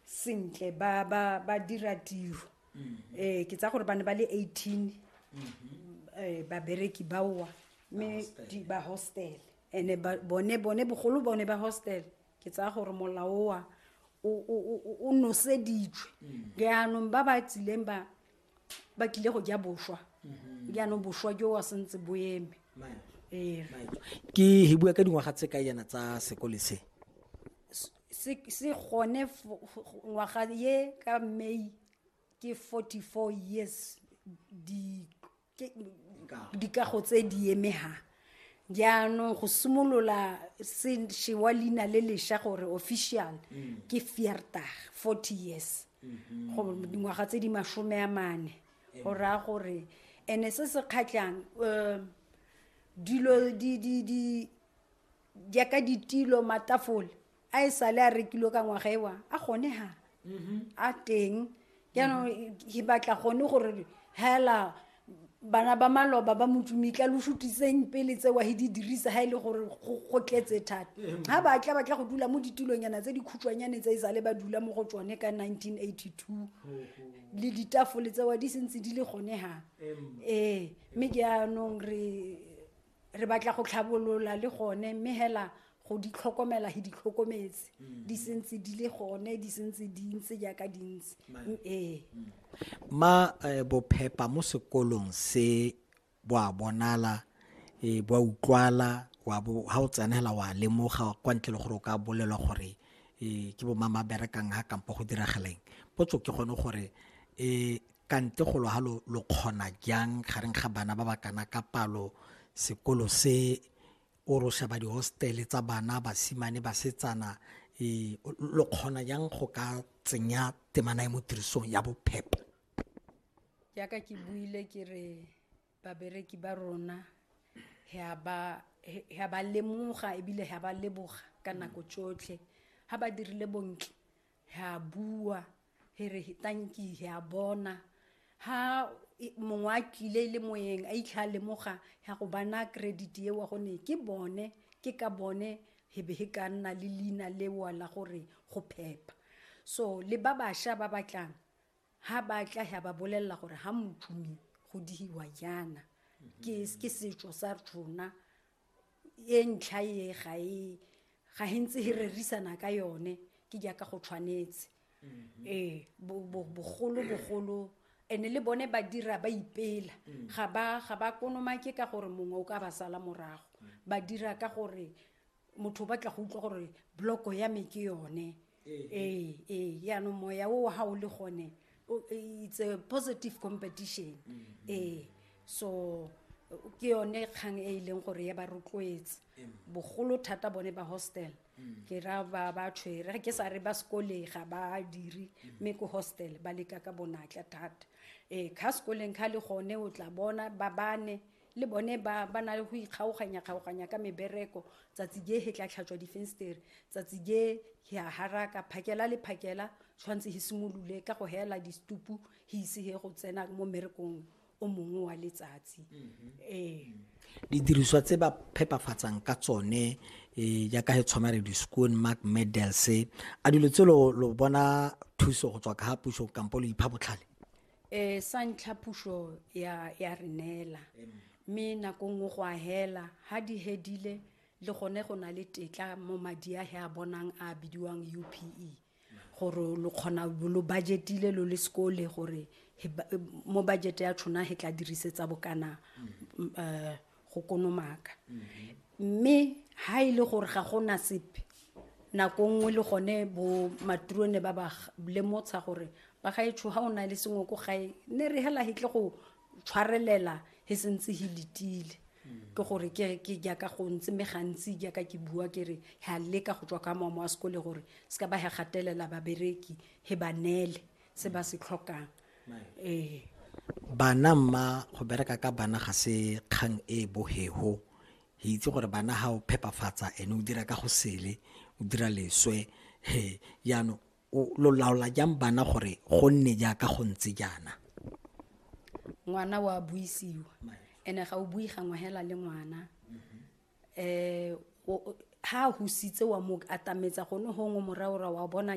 sentle ba ba ba dira tiro mm-hmm. eh ke tsa gore ba ne ba le 18 mm-hmm. eh ba bereki ba wa me di ba hostel ene ba bone bone bogolo bone ba hostel ke tsa gore molao wa o o o noseditswe mm. jaanong ba ba tsileng ba ba tlile go ja boswa mhm. jaanong boswa jo wa sentse bo eme ee. ke he bua ka dingwaga tse ka yana tsa sekole se se gone ngwaga ye ka may ke 44 years dikago tse di emegang jaanong go simolola se wa leina le lesha gore official mm. ke fiertag forty years mm-hmm. go dingwaga tse di masome a mane go raya gore ene se se kgatlhang um dilo jaaka ditilo matafole a e sale a rekilwe ka ngwaga ewa a gone ha a teng jaanong ke batla gone gore hela bana ba maloba ba motsumitla lo sutiseng pele tsewa he di dirisa ha e le gore go go tletse thata ga batla batla go dula mo ditulonyana tse dikhutshwanyane tse e sale ba dula mo go tsone ka 1982 le ditafole tsewa di sentse di le gone ha ee mme jaanong re re batla go tlhabolola le gone mme hela go di tlhokomela he di tlhokometse mm. di sentse di le gone di sentse di ntse jaaka di ntse mm, ee mm. ma eh, bophepa mo sekolong se bo a bonala e bo utlwala wa bo ha o tsenela wa lemoga kwa ntle le gore o ka bolelwa gore e ke bo mama berekang ha kampo go dirageleng potso ke gone gore e kante golo ha lo lo kgona jang gareng ga bana ba ba kana ka palo sekolo se o ro sheba di hostel tsa bana basimane basetsana e lo kgona jang go ka tsenya temana e mo tirisong ya bophepho jaaka ke buile ke re babereki ba rona ga ba ga ba lemoga ebile ga ba leboga ka nako tsotlhe ga ba dirile bontle he a bua he re tanki he a bona ha mongwe a tlile le moyeng a itlha a lemoga ya go bana credit eo gone ke bone ke ka bone he be he ka nna le leina lewa la gore go phepa so le ba bašwa ba batlang ha ba tla ya ba bolelela gore ha motšhumi go dihiwa yana ke ke setšo sa rona e ntlha e ga e ga e ntse e rerisana ka yone ke jaaka go tshwanetse mm-hmm. ee bogolo bogolo ene le bone ba dira ba ipela mm. ga ba ga ba konomake ka gore mongwe o ka ba sala morago mm. ba dira ka gore motho o batla go utlwa gore bloko ya me ke yone ee ee yaanong moya o ga o le gone o- it's a positive competition ee so ke yone kgang e e leng gore ya ba rotloetse bogolo thata bone ba hostel ke ra ba ba tshwere ga ke sa re ba sekoleng ga ba dire mme ko hostel ba leka ka bonatla thata ee kha sekoleng kha le gone o tla bona ba bane Le bone ba ba na le go ikgaoganya-kgaoganya ka mebereko, tsatsi je he tla tlhatswa difenstere, tsatsi je he a haraka, phakela le phakela tshwanetse he simolole ka go heela distupu he ise he go tsena mo mmerekong o mongwe wa letsatsi. Ee. Didiriswa tse ba phepafatsang ka tsone eh, jaaka he tshwana re di-schoon mark medals a dilo tse lo lo bona thuso go tswa ka ga puso kampo lo ipha botlhale um sa ntlha puso ya ya re neela mme nako nngwe go a hela ga di hedile le gone go na le tetla mo madi a he a bonang a bidiwang u p e gore lo kgona lo budgetile lo le sekole gore mo budget ya tshona he tla dirisetsa bokana um go konomaka mme ha e le gore ga go na sepe nako nngwe le gone bo maturone ba ba lemotsha gore ba ga etsho ha o na le sengwe ko gae ne re hela hitle go tshwarelela he sentse he letile ke gore ke ke jaaka go ntse me gantsi jaaka ke bua ke re ha leka go tswa ka mamo a sekole gore se ka ba he gatelela babereki he ba nele se ba se tlhokang ee bana mma go bereka ka bana ga se kgang e e bohego re itse gore bana ga o phepafatsa ene o dira ka go sele o dira leswe he jaanong lo laola jang bana gore go nne jaaka go ntse jaana ngwana wa buisiwa ene ga o bui gangwe hela le ngwana um ha a husitse wa mo atametsa gone gongwe moraora wa bona